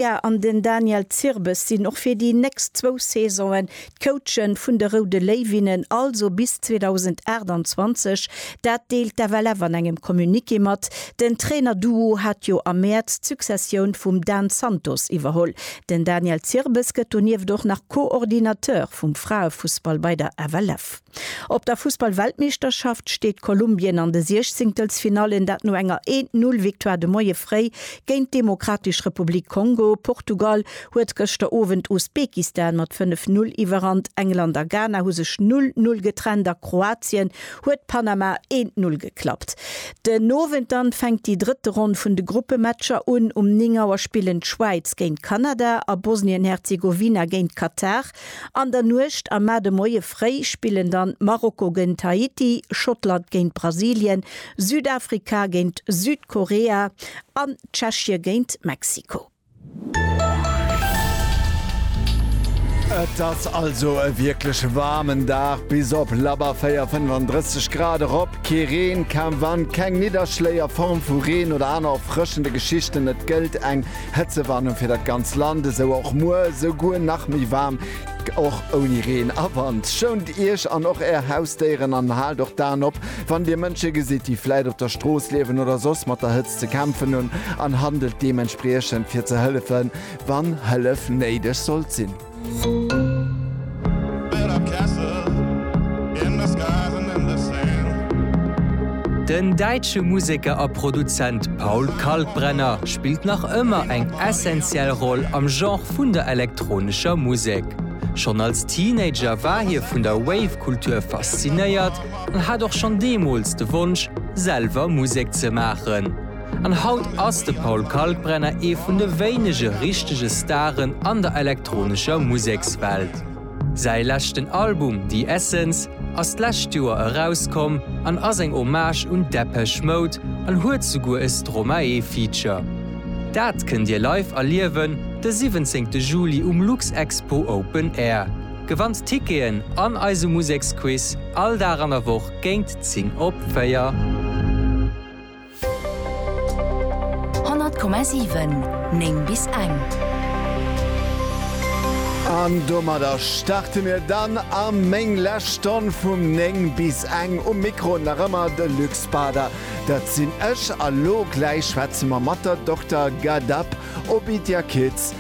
D'Bea an den Daniel Zirbes sinn och fir déi nächst zwou Saisonen d'Coache vun de Roude Léiwinnen, also bis 2028. Dat deelt d'FLF an engem Communiqué mat. Den Trainer-Duo hat jo am Mäerz d'Successioun vum Dan Santos iwwerholl. Den Daniel Zirbes gëtt donieft och nach Co-Ordinateur vum Fraefussball bei der FLF. Op der Fussball-Weltmeeschterschaft steet Kolumbien an de Siechzéngtelsfinallen, dat no enger Eent-Null-Victoire de Moie fréi géint d'Demokratesch Republik Kongo. Portugal huet gëschter Owend Usbekistan mat 5 Null iwwerrannt, England a Ghana hu sech Null Null getrennt a Kroatien huet Panama Eent Null geklappt. Den Owend dann fänkt déi drëtte Ronn vun de Gruppematcher un. Um 9 Auer spillen d'Schwäiz géint Kanada a Bosnien-Herzegowina géint Katar. An der Nuecht a mar de Moie fréi spillen dann Marokko géint Haiti, Schottland géint Brasilien, Südafrika géint Südkorea an Tschechie géint Mexiko. Et ass also e wierklech waarmen Dag, bis op labber 4, 35 Grad erop. Kee Reen, kaum Wand, keng Nidderschléi a Form vu Reen oder aner erfrëschende Geschichten. Et gëllt eng. Hëtzewarnung fir dat ganz Land, esou och muer, esouguer nach méi waarm, och ouni Reen a Wand. Schount Iech an och Är Hausdéieren an haalt och d'Aen op, wann Dir Mënsche gesitt, déi vläit op der Strooss liewen oder soss mat der Hëtzt ze kämpfen hunn, an handelt deementspriechend, fir ze hëllefen, wann Hëllef néideg sollt sinn. Den däitsche Museker a Produzent Paul Kalkbrenner spillt nach ëmmer eng essentiell Roll am Genre vun der elektronescher Musek. Schonn als Teenager war hie vun der Wave-Kultur faszinéiert an hat och schonn deemools de Wonsch, selwer Musek ze maachen. An haut ass de Paul Kalkbrenner ee vun de wéinege richtege Staren an der elektronescher Musekswelt. Säi leschten Album The Essence ass d'lescht Joer erauskomm an ass eng Hommage un Depeche Mode an huet souguer e Stromae-Feature. Dat kënnt Dir live erliewen de 17 Juli um Luxexpo Open Air. Gewannt Ticketen an eise Museksquiz all Dag an der Woch géint 10 op 4. 100,7 9 bis eng. An domadder starte mir dann a meng lescht Stonn vum 9 bis eng. Um Mikro nach ëmmer de Luc Spader, dat sinn ech. A lo gläich schwätze mer mat der Dokter Ghadab Obidjakids.